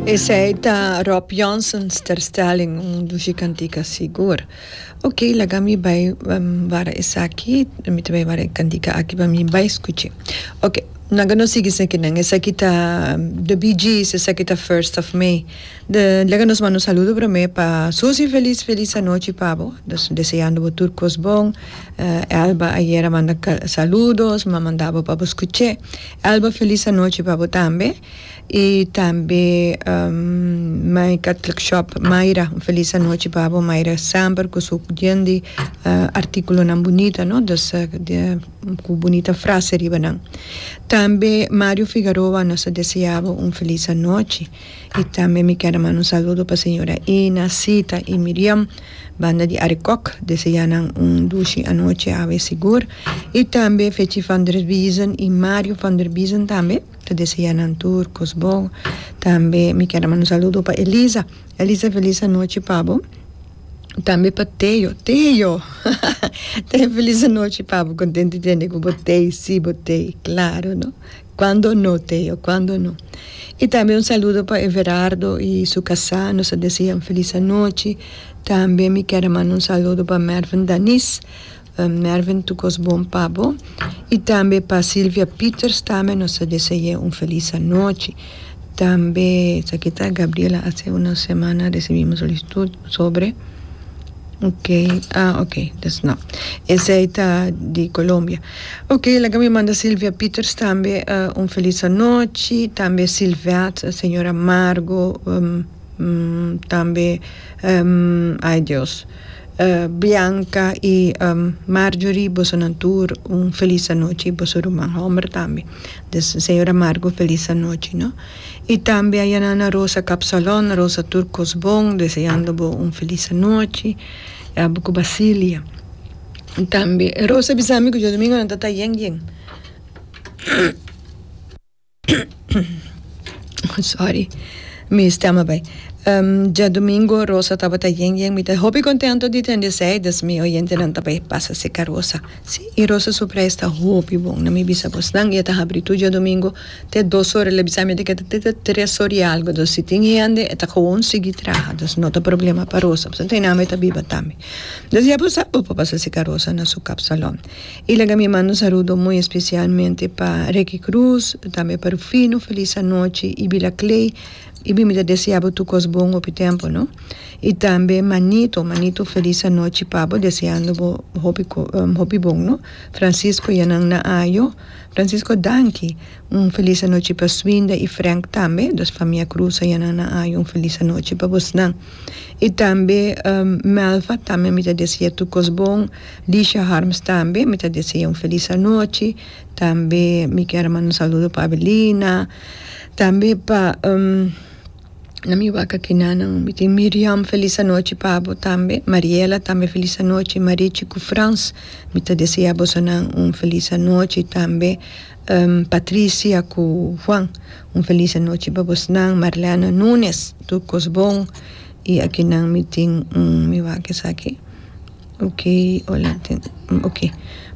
Esei ta Rob Johnson's terstelling, un dushi cantica sigur. Ok, laga mi bay wara esaki, mi ta bay wara e cantica aki pa mi bay scuchi. Ok, nan ka no sigui sekinan. Esaki ta The Bee Gees, esaki ta First of May. De, laga nos manda un saludo prome pa Susi, feliz, feliz anochi pa bo. Nos deseando bo tur cos bon. Elba ayer a manda saludos, mi a manda bo pa bo scuche. Elba Feliz anochi pa bo tambe y tambe Mai Catholic Shop Mayra un feliz anochi pa bo Mayra semper cu su yen di articulonan bunita no dus cu bunita frase riba nan tambe Mario Figaroa nos ta deseabo un feliz anochi. Y tambe mi ker a manda un saludo pa señora Ina, Sita y Miriam banda di Arikok, deseá nan un dushi anochi awe sigur. Y tambe Fetji van der Biezen y Mario van der Biezen tambe ta deseá nan tur cos bon. Tambe mi ker a manda un saludo pa Elisa, Elisa felis anochi pa bo. Tambe pa Teo, Teo Teo felis anochi pa bo, contento tende cu bo tey, si bo tey, claro no. Cuando no Theo, cuando no. Y tambe un saludo pa Everardo y su casá, nos ta deseá un feliz anochi. Tambe mi ker a manda un saludo pa Mervin Danis, Mervin tur cos bon pa bo. Y tambe pa Silvia Pieters tambe nos ta deseá un feliz anochi. Tambe esaki ta Gabriela, hace una semana recibimos un solicitud sobre, ok, ah ok, esei ta di Colombia. Ok laga mi manda Silvia Pieters tambe un felis anochi tambe Silvette señora Margo tambe ay Dios Bianca y Marjorie bosonan tur un felis anochi y boso ruman homber tambe des señora Margo felis anochi no y tambe ayanana Rosa Capsalon Rosa tur cos bon deseando bo un felis anochi abo cu Bacilia. Tambe e Rosa bisa mi ku djodomingo nan ta ta yen yen sorry mi stem a bai djodomingo Rosa tabata yen yen mi ta hopi kontento di tende esei dus mi oyentenan ta bai pasa seka Rosa si i Rosa su prijs ta hopi bon na mi bisa bo snan i e ta habri tur djodomingo te dos ora el a bisa mi ta keda te tres ora i algu dus si tin hende e ta gewoon sigui traha dus no ta problema pa Rosa pasobra e nanan bai ta biba tambe. Nos ya por sa bo por pasa si karosa na su kap salon. I laga mi manda un sarudo muy especialmente pa Ricky Cruz, tambe pa Rufino, feliz anochi i Bila Clay i bin mi ta desea bo tur kos bon hopi tempo no. I tambe Manito, Manito feliz anochi pa bo deseando bo hopi hopi bon no. Francisco yanan na ayo, Francisco danki. Un felis anochi pa Swinda y Frank tambe dos famia Cruz a yana nan ayo un felis anochi pa bos nan y tambe Melva tambe mi ta deseya tur cos bon Lisha Harms tambe mi ta deseya un felis anochi tambe mi quier a manda un saludo pa Abelina tambe pa nan mi wak aki nan nan mi tin Miriam felis anochi pa bo tambe Mariela tambe felis anochi Marichi cu Frans mi ta deseya boso nan un felis anochi tambe. Patricia ku Juan un felis anochi pa bosnan Marliana Nunes tur kos bon i aki nan mi tin un mi wak esaki oke hola oke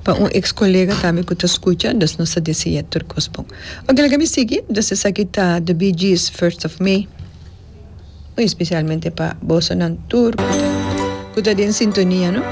pa un eks kolega tambe ku ta skucha dus nos ta deseá tur kos bon oke laga mi sigui dus esaki ta The Bee Gees First of May muy especialmente pa boso nan tur ku ta den sintonia no.